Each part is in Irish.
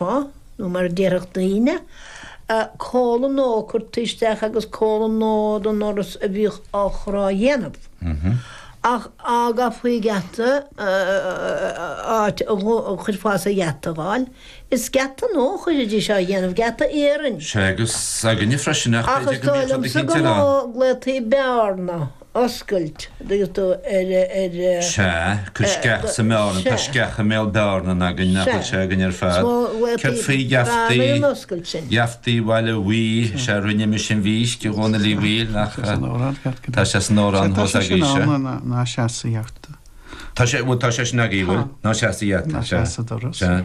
Ba, nó mar a déarfadh daoine, comhlainn nua curtha isteach agus comhlainn nua don doras a bhíodh á chur á dhéanamh. Ach dá gcaithfí geata, áit a chuir fás ar gheata a fháil, is geata nua a chuiridís á dhéanamh, geata iarainn. Sea, agus againne freisin, ach b'fhéidir go mbíodh rud éicint ar an. Ach is dóigh liomsa go nglaodhtaí bearna oscailt agus do ar ar. sea, cuir sceach sa mbearna, tá sceach i mbéal bearnan againn nach bhfuil sé againn ar fad. Céard faoi gheaftaí, gheaftaí Bhaile Bhuí, sea rinne mise an mhísc a Dhónaill Uí Bhaoill nach tá sé san amhrán thall is agaibhse. ná seas sa gheafta. Tá sé, bhuel tá sé sin agaibh bhuel ná seas sa gheafta, sea, sea.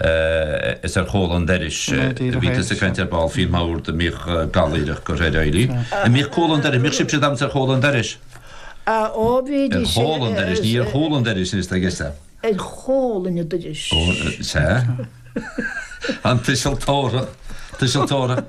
Is ar chomhla an dorais a bhí tusa ag caint ar ball faoin mbord a mbíodh galláireach curtha ar Éirí. An mbíodh comhla an dorais? An mbíodh sibhse ag damhsa ar chomhla an dorais. Á, ó, bhídís. Ar chomhlainn an dorais, ní ar chomhla an dorais, is dóigh, is ea? Ar chomhlainn an dorais. Ó, sea. An tuiseal tabharthach, tuiseal tabharthach.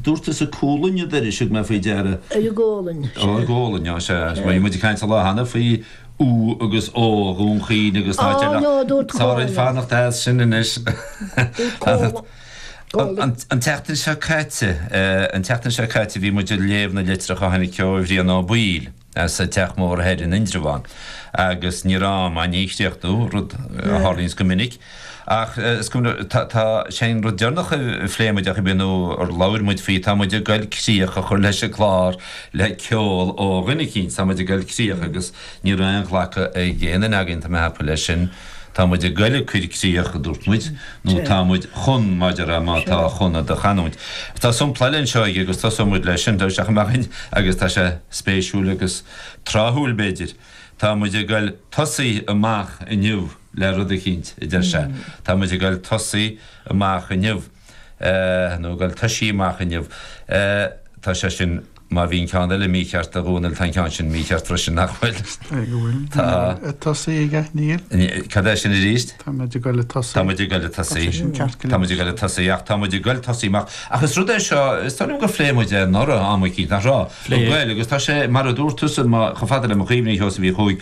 Dúirt tusa comhlainn an dorais, thug mé faoi deara. Ar an gcomhlainn, sea. Ar an gcomhlainn, á, sea. Bhí muid ag caint an lá cheana faoi U agus O Dhún Chaoin agus tá deir nach fearr dhúinn fanacht as sin anois. An tseachtain seo caite, an tseachtain seo caite bhí muid ag léamh na litreach a tháinig ó Bhrian Ó Baoill. as an Teach Mór thoir in Indreabhán agus ní raibh am ann é a chríochnú, rud a tharlaíonns go minic. Ach is cuma, tá, sé an rud deireanach a phléigh muid, ach a mhíniú ar labhair muid faoi, tá muid ag goil críoch a chur leis an gclár le ceol ó dhuine eicínt, tá muid ag goil críoch agus ní raibh aon ghlacadh ag aon duine againn, tá mé a cheapadh leis sin, tá muid ag goil ag cur críoch a dúirt muid, nó tá muid chun, maidir le má tá chun i do chanúint. Tá sompla eile anseo aige agus tosóidh muid leis sin, tá tosaigh amach ann, agus tá sé spéisiúil agus tráthúil, b'fhéidir. Tá muid ag goil tosaigh amach inniu le rud eicínt, a deir sé. Tá muid ag goil tosaigh amach inniu. nó ag goil tosaí amach inniu. Tá sé sin. Má bhí an ceann eile mícheart a Dhónaill tá an ceann sin mícheart freisin, nach bhfuil? Cé go bhfuil. Tá. Níl mé ag tosaí aige, níl. Cad é sin arís? Tá muid ag dul ag tosaí. Tá muid ag dul ag tosaí. Tá sé sin ceart go leor. Tá muid ag dul ag tosaí, ach tá muid ag dul tosaí amach. Ach is rud é seo, is dóigh liom gur phléigh muid é anuraidh am eicínt, nach raibh? Phléigh. Bhuel, agus tá sé, mar a dúirt tusa, má, chomh fada le mo chuimhne, a Sheosaimh Uí Chuaig,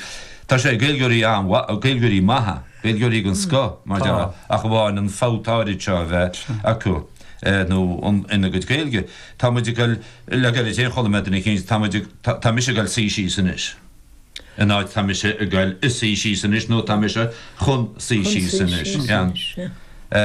tá sé ag Gaeilgeoirí an-mhaith, ag Gaeilgeoirí maithe, Gaeilgeoirí den scoth, mar dhea, ach amháin an fabht áirid seo a bheith acu. eh nó an, ina gcuid Gaeilge, tá muid ag goil, le gairid féin chuala mé duine éicínt, tá muid ag, tá, tá mise ag goil suí síos anois, in áit tá mise ag goil ag suí síos anois nó tá mise chun suí síos anois, yeah.